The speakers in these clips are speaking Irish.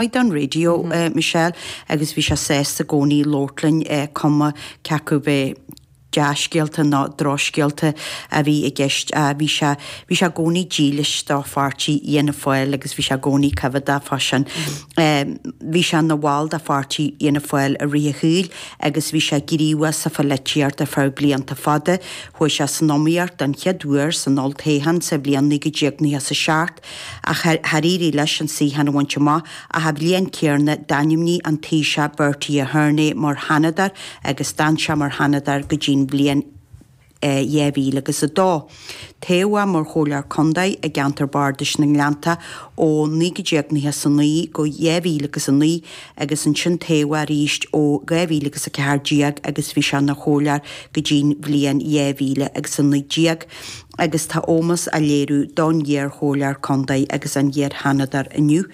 Beidh an raidió, a Michelle, agus bhí sé sásta i gcónaí labhairt linn, cuma cé acu ba dea-scéalta nó drochscéalta a bhí i gceist. Á, bhí sé, bhí sé i gcónaí dílis do pháirtí Fhianna Fáil, agus bhí sé i gcónaí coimheádach fá sin. Bhí sé ina bhall de pháirtí Fhianna Fáil i rith a shaoil agus bhí sé gníomhach sa pholaitíocht ar feadh blianta fada. Chuaigh sé san iomaíocht don chéad uair san olltoghchán sa bhliain 1997. Ach char éirigh leis an suíochán a bhaint amach ach an bhliain céanna d'ainmnigh an Taoiseach Bertie Ahern é mar sheanadóir agus d'fhan sé mar sheanadóir go dtí'n bhliain 2000 agus a dó. Toghadh mar chomhairleoir contae i gceantar bardais na nGleannta ó 1999 go 2000 agus a naoi agus ansin toghadh arís ó 2000 agus a ceathair déag agus bhí sé ina chomhairleoir go dtí'n bhliain 2000 agus a naoi déag. agus tá ómós á léiriú don iar-Chomhairleoir Contae agus an iar-Sheanadóir inniu.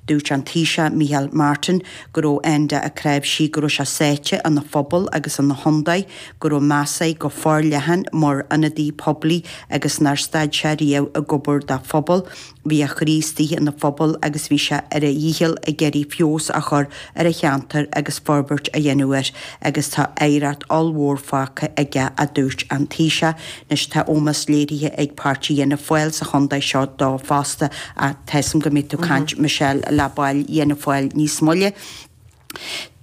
Dúirt an Taoiseach Micheál Martin go raibh Enda Ó Cnáimhsí, go raibh sé sáite ina phobal agus ina chontae, go raibh meas air go forleathan mar ionadaí poiblí agus nár stad sé riamh ag obair dá phobal. Bhí a chroí istigh ina phobal agus bhí sé ar a dhícheall ag iarraidh feabhas a chur ar a cheantar agus forbairt a dhéanamh air agus tá oidhreacht ollmhór fágtha aige, a dúirt an Taoiseach. Anois tá ómós léirithe ag páirtí Fhianna Fáil sa chontae seo dó fosta ach tá's a'm go mbeidh tú caint Michelle le baill Fhianna Fáil níos moille.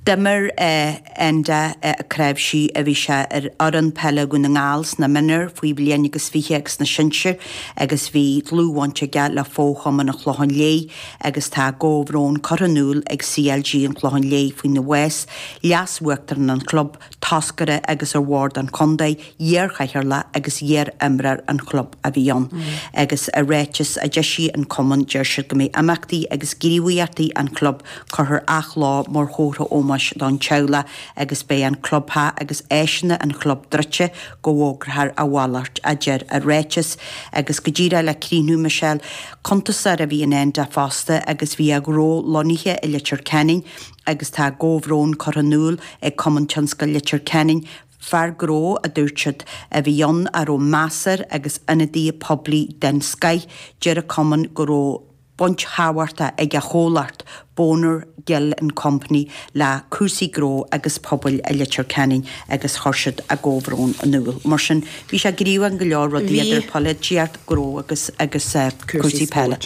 D'imir Enda Ó Cnáimhsí a bhí sé ar fhoireann peile Dhún na nGall sna mionúir, faoi bhliain agus fiche agus sna sinsir agus bhí dlúthbhaint aige le fochumann an Chlocháin Léith agus tá a gcomhbhrón curtha in iúl ag CLG an Chlocháin Léith faoina bhás, leas-uachtarán an chlub. toscaire agus ar Bhord an Chontae, iarchathaoirleach agus iar-imreoir an chlub a bhí ann, agus i ráiteas a d'eisigh an cumann deir siad go mbeidh imeachtaí agus gníomhaíochtaí an chlub curtha ar athlá mar chomhartha ómóis don teaghlach agus beidh an clubtheach agus áiseanna an chlub druidte go bhfógraithear a mhalairt, a deir an ráiteas, agus go díreach le críochnú, Michelle, cuntasóir a bhí in Enda fosta agus bhí a ghnó lonnaithe i Leitir Ceanainn, agus tá a gcomhbhrón curtha in iúl ag Cumann Tionscail Leitir Ceanainn, fear gnó, a dúirt siad, a bhí ann a raibh meas air agus ionadaí poiblí den scoith, deir an Cumann go raibh baint thábhachtach ag a chomhlacht, Bonner, Gill and Company, le cúrsaí gnó agus pobail i Leitir Ceanainn agus chuir siad a gcomhbhrón in iúl. Mar sin, bhí sé gníomhach in go leor rudaí idir polaitíocht, gnó agus cúrsaí peile.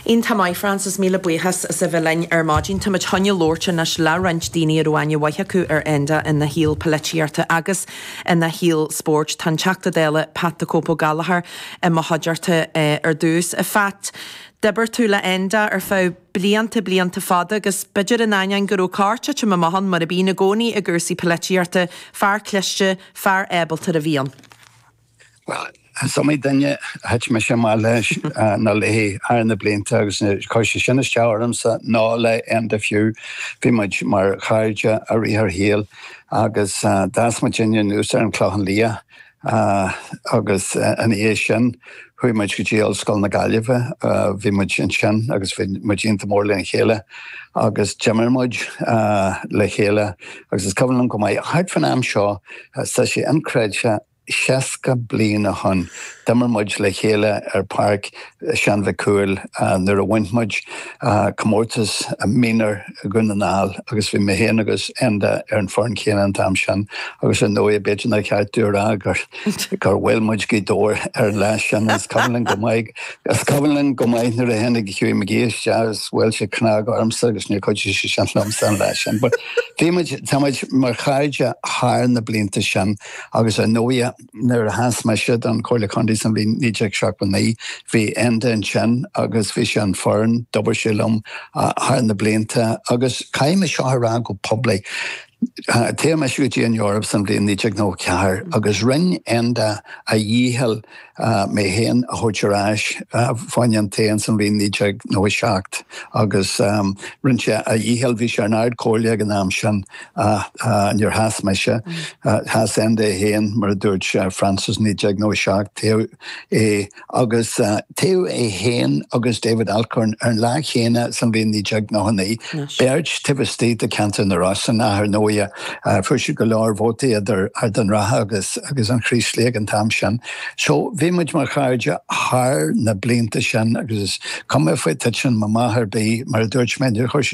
Iontach maith, Frances, míle buíochas as a bheith linn ar maidin. Táimid chun a labhairt anois le roinnt daoine a raibh aithne mhaith acu ar Enda ina shaol polaitíochta agus ina shaol spóirt. Tá an Teachta Dála Pat the Cope Ó Gallachóir i mo chuideachta ar dtús. A Phat, d'oibir tú le Enda ar feadh blianta, blianta fada agus b'fhéidir in ainneoin go raibh corrthitim amach ann, mar a bhíonn i gcónaí i gcúrsaí polaitíochta, fear cliste, fear ábalta a bhí ann. Is iomaí duine a thit mise amach leis thar na blianta agus chuir sé sin isteach ormsa, nó le Enda fiú, bhí muid mar chairde i rith ár shaoil agus d'fhás muidinne anuas ar an Chlochán Liath agus ina dhiaidh sin chuaigh muid go dtí Ollscoil na Gaillimhe, bhí muid ansin agus bhí muid iontach mór lena chéile agus d'imir muid le chéile agus is cuimhin liom go maith, thart faoin am seo, tá sé inchreidte. Seasca bliain ó shoin, d'imir muid le chéile ar Pháirc Sheáin Mhic Cumhaill nuair a bhain muid comórtas Mionúr Dhún na nGall agus bhí mé féin agus Enda ar an fhoireann chéanna an t-am sin agus ar ndóigh b'fhéidir nár cheart domh a rá gur bhuail muid Gaoth Dobhair ar an lá sin, is cuimhin liom go maith nuair a tháinig Hughie McGee isteach agus bhuail sé cnag ormsa agus níor chuidigh sé sin liomsa an lá sin but bhí muid, tá muid mar chairde thar na blianta sin. Agus ar ndóighe, nuair a sheas mise don Chomhairle Contae sa bhliain 1979, bhí Enda ansin agus bhí sé ar an fhoireann, d'oibir sé liom thar na blianta agus caithfidh mé seo a rá go poiblí, toghadh mise go dtí an Eoraip sa bhliain 1994 agus rinn Enda a dhícheall, mé féin a thabhairt ar ais fá choinne an toghcháin ins an bhliain 1997 agus rinne sé a dhícheall, bhí sé ar an Ard Chomhairle ag an am sin ach níor sheas mise, sheas Enda é féin mar a dúirt Frances 1997, toghadh é agus toghadh é féin agus David Alcorn ar an lá chéanna san bhliain 1999, beirt taobh istigh de cheantar na Rosann ach ar ndóighe, Fuair siad go leor vótaí idir Ard an Rátha agus an Chraoslaigh ag an t-am sin. So, bhí muid mar chairde thar na blianta sin agus is cuma faoi titim amach ar bith, mar a dúirt mé, níor chuir sí